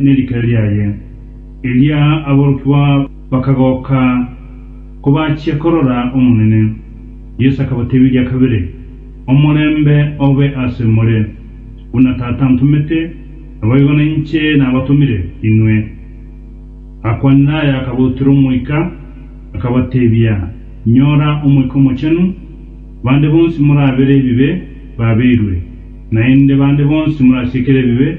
nerikari riaye. Erio aborokigwa bakagoka kobachia korora Omonene. Yeso akabatebiria kabere, Omorembe obe ase more! Buna Tata antomete, naboigo nainche nabatomire inwe. Agakwanera aya akabautera Omoika, akabatebia, Nyora Omoika Omochenu, bande bonsi morabere ebibe babeirwe, naende bande bonsi morasiekere ebibe,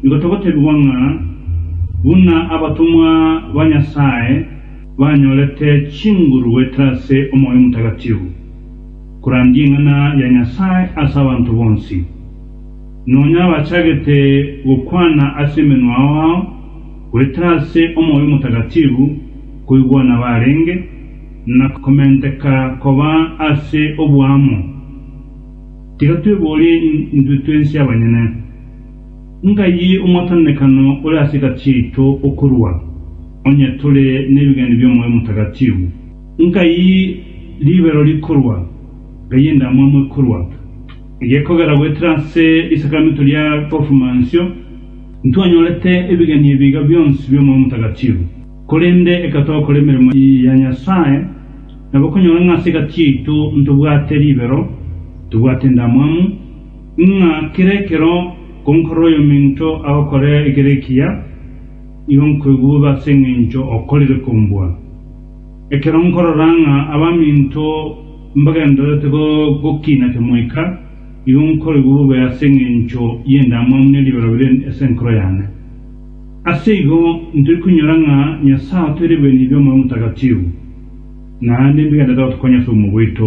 Nigo togotegigwa ng'a buna abatomwa ba Nyasae banyorete chinguru goetera ase omoyo omotagatifu, korandia eng'ana ya Nyasae ase abanto bonsi, nonya abachagete gokwana ase emenwa ao ao goetera ase omoyo omotagatifu koigwa nabarenge, na komenteka koba ase oboamo. Tiga tweborie intwe twensi abanyene. Ng'ayio omotenenekano ore ase egati yaito okorua, onye tore nebigaani bi'omoyo omotagatibwu. Ng'ai ribero rikorua, ng'ai endamwamu ekorua, egekogera goetera ase risakraminto ria Kofumansio, intwanyorete ebigaani ebi iga bionsi bi'omoyo omotagatibwu. Korende ekatwaba gokora emeremo ya Nyasae, nabo okonyora ng'a ase egati yaito ntobwate ribero, tobwate endamwamu, Ng'a kera ekero nkonkora oyominto agokora ekero ekiya, nigo nkoigwa bobe ase engencho okorire kombua. Ekero nkorora ng'a abaminto mbagendererete gokina kemoika, nigo nkoigwa bobe ase engencho y'endamwamu ne ribero bire ase enkoro yane. Ase igo ntari konyora ng'a Nyasae otoeire ebirengererio bi'Omoyo Omotagatifu, na nembigendererete gotokonya ase obomo bwaito.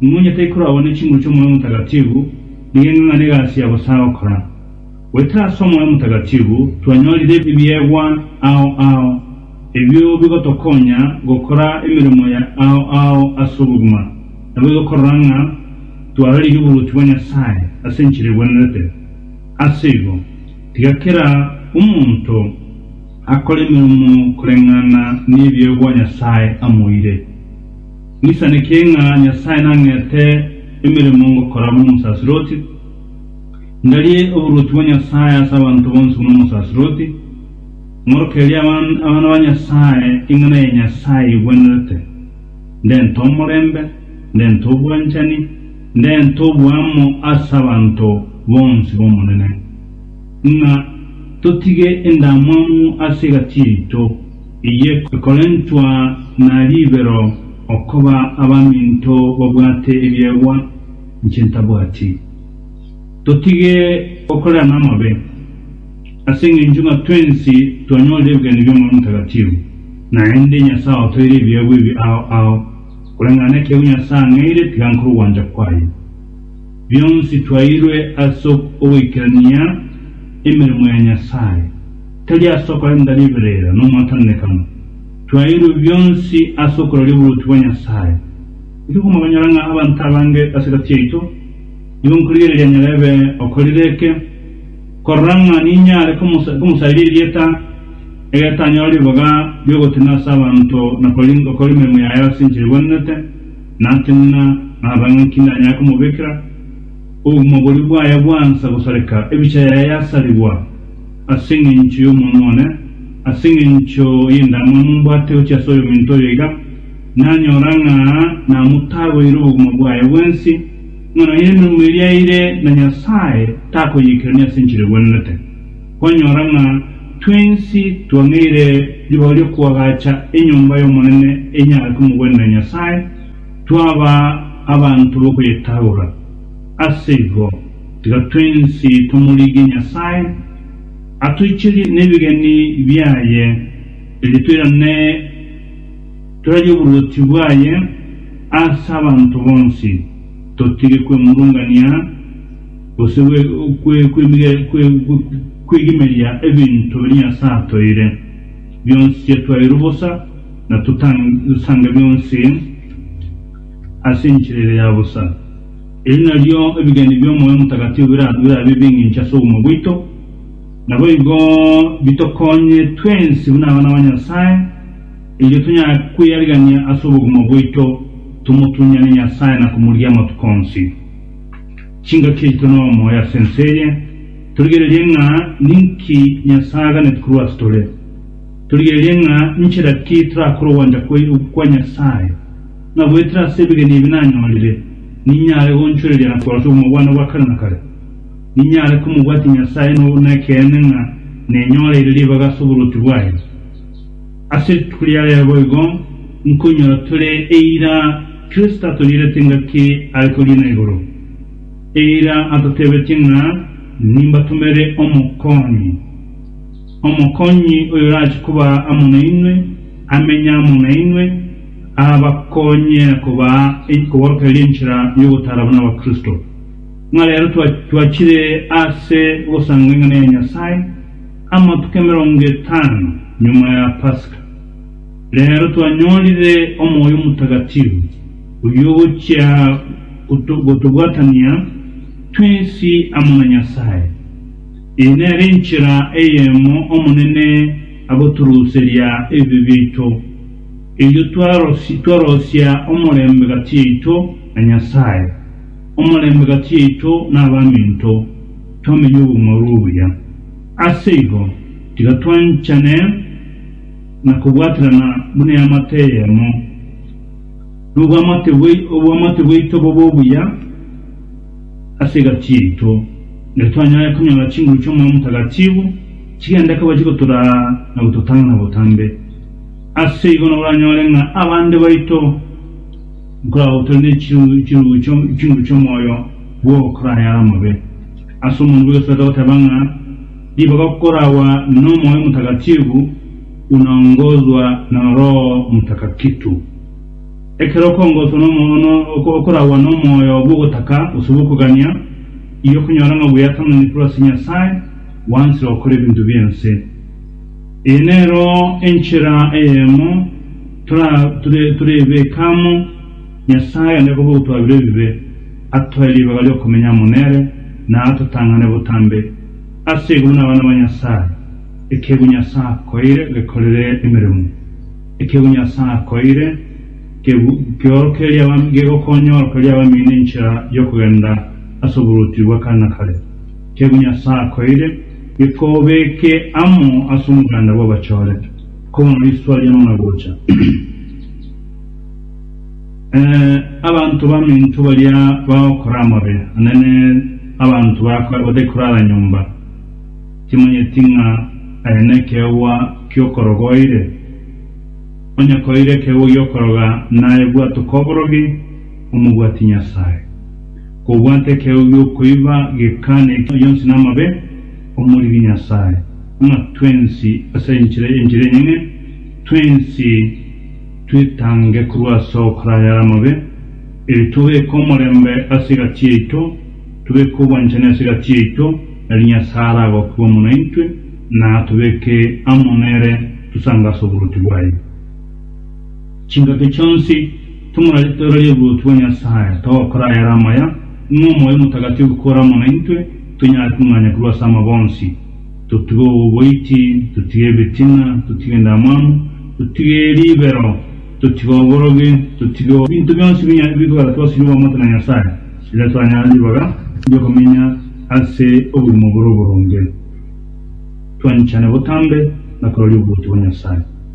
Momonye taikoragwa ne chinguru chi'Omoyo Omotagatibbu, nigo eng'ang'ane egasi ya bosa gokora. Goetera ase Omoyo Omotagatibbu twanyorire ebiegwa ao ao, ebio bigotokonya gokora emeremo ya ao ao ase obogima, naboigo korora ng'a twararigia oboruoti bwa Nyasae ase enchera egwenerete. Ase igo, tiga kera omonto akore emeremo koreng'ana nebiegwa Nyasae amoire. Nisaneke ng'a Nyasae nang'ete emeremo ngokora buna omosaserdoti, ndarie oboruoti bwa Nyasae ase abanto bonsi buna omosaserdoti, ng'orokererie abana ba Nyasae eng'ana ya Nyasae egwenerete, ndente omorembe, ndente obwanchani, ndente oboamo ase abanto bonsi b'Omonene, ng'a totige endamwamu ase egati yaito. Eye ekorentwa na ribero okoba abaminto babwate ebiegwa inche ntabwati. Totige gokorera namabe, ase engencho ng'a twensi twanyorire ebegani bi'Omoyo Omotakatifu, naende Nyasae otoeire ebiegwa ebi ao ao, koreng'ana nekiegwa Nyasae ang'eire tiga nkore ogwancha kwaye. Bionsi twairwe ase ogoikerania emeremo ya Nyasae. Tari ase okorenta riberera nomotenenekano, twaeirwe bionsi ase okorori oboruoti bwa Nyasae. Eri komoganyora ng'a abanto abange ase egati yaito, nigo nkorigereria nyara ebe okorire eke, korora ng'a ninyare komosairia erieta, egetanyora ribaga riogotenena ase abanto na gokora emeremo yaye ase enchera egwenerete, natenena, naroba ng'a inki ndanyare komobekera. Obogima boria bwaye bwansa gosareka, ebicha yaye yasarigwa. as'engencho y'Omonwa one, as'engencho y'endamwamu mbwate gochia as'oyominto oyo iga, nanyora ng'a namotagoire obogima bwaye bwensi, ng'a nonya emeremo eria aeire na Nyasae takoyikerania as'enchera egwenenete. Kwanyora ng'a twensi twang'eire ribaga ri'okoagacha enyomba y'Omonene enyare komogwenera Nyasae, twaba abanto b'okoyetagora. Aseigo. Tiga twensi tomorigie Nyasae, atoicherie nebigeni biaye, erio toirane torarie oboruoti bwaye ase abanto bonsi, totige kwemurungania, gose kwegimeria ebinto biria Nyasae atoire. Bionsi yatwairwe bosa, na totange bionsi ase enchera ere ya bosa. Eri nario ebigeni bi'Omoyo Omotagatio birabe ebing'incho ase obogima bwaito. Naboigo bitokonye twensi buna abana ba Nyasae, erio tonyare kweyarigania ase obogima bwaito, tomotunyane Nyasae na komorigia amatuko onsi. Chingaki yaito nomoyo ase ense eye. Torigererie ng'a ninki Nyasae aganeti korwa ase tore. Torigererie ng'a nchera ki torakore ogwancha kwa Nyasae. Ng'a goetera ase ebegeni ebi nanyorire, ninyare gonchoreria na korota obomobwane bwa kare na kare. Ninyare komobwatia Nyasae na obo nekeene ng'a nenyoreire ribaga ase oborwoti bwaye. Ase rituko ria rero boigo nkonyora tore eira Kristo atoriirete engaki are koriina igoro, eira atotebetie ng'a nimbatomere Omokonyi, Omokonyi oyorache koba amo nainwe, amenye amo nainwe, abakonye kobaa enkoborokereria enchera y'ogotaara buna Abakristo. Ng'a reero twachire ase ogosanga eng'ana ya Nyasae amatuko emerongo etano nyuma ya Pasika. Reero twanyorire omoyo omotagatifu, oyio ogochia gotobwatania twensi amo na Nyasae. Eye nere enchera eyemo Omonene agotoruseria ebibe biaito. Erio twaroisia omorembe gati yaito na Nyasae, omorembe gati yaito nabaminto, twamenye obong'aini obuya. Ase igo, tiga twanchane na kobwaterana buna eamate eyemo, nobwamate bwaito bobe obuya ase egati yaito, erio twanyare konyora chinguru chi'Omoyo Omotagatifu chigende koba chigotoraa na gototang'ana botambe. Ase igo naboranyore ng'a abande baito nkoragotorwa ne chirungo chirungo chio chinguru chi'omoyo bw'okorara yare omobe. Ase omonto bw'egesato agoteba ng'a ribaga koragwa n'Omoyo Motagatifu unaongozwa na Roho Motakakitu. Ekero okongoswa nomo no oko- okoragwa n'omoyo bw'ogotaka gose bw'okogania, iyokonyora ng'a bweatananire korwa ase Nyasae, gwansire gokora ebinto bi'ense. Eye nero enchera eyemo torebeke amo Nyasae onde koba ogotwabira ebibe, atoe ribaga ri'okomenya amo nere, na atotang'ane botambe ase igoro nabana ba Nyasae. Ekeegwa Nyasae akoeire gekorere emeremo. Ekeegwa Nyasae akoeire gegokonya orokererie abamino enchera y'okogenda ase oboruoti bwa kare na kare. Tebia Nyasae akoeire bikobeke amo ase omoganda bw'abachorete, kobono riswa ria nona gocha. Ee, abanto baminto baria bagokora amabe anene, abanto bakoe batae korara nyomba, timanyeti ng'a aye nekeegwa ki'okoroga oeire? Onye koeire ekeegwa gi'okoroga, naye bwatoke oborogi, omobwati Nyasae. Kobwata ekero gi'okoiba gekane enchera yonsi namabe, omoriri Nyasae, ng'a twensi ase enchera y'enchera enyene, twensi twetange korwa ase ogokora ayare amabe, erio tobeke omorembe ase egati yaito, tobeke obwanchani ase egati yaito, erio Nyasae aragokigwe amo naintwe, na atobeke amo nere tosange ase oboruoti bwaye. Chingaki chionsi tomorarorie oboruoti bwa Nyasae, togokora ayare amaya, ng'a omoyo omotagataifu kore amo naintwe, tonyare kong'anya korwa ase amabe onsi, totige oboiti, totige ebitina, totige endamwamu, totige ribero, totige oborogi, totige ebinto bionsi binya bikogera twasiria obwamate na Nyasae, erio twanyare ribaga ri'okomenya ase obogima bore oboronge, twanyichane botambe na kororia oboruoti bwa Nyasae.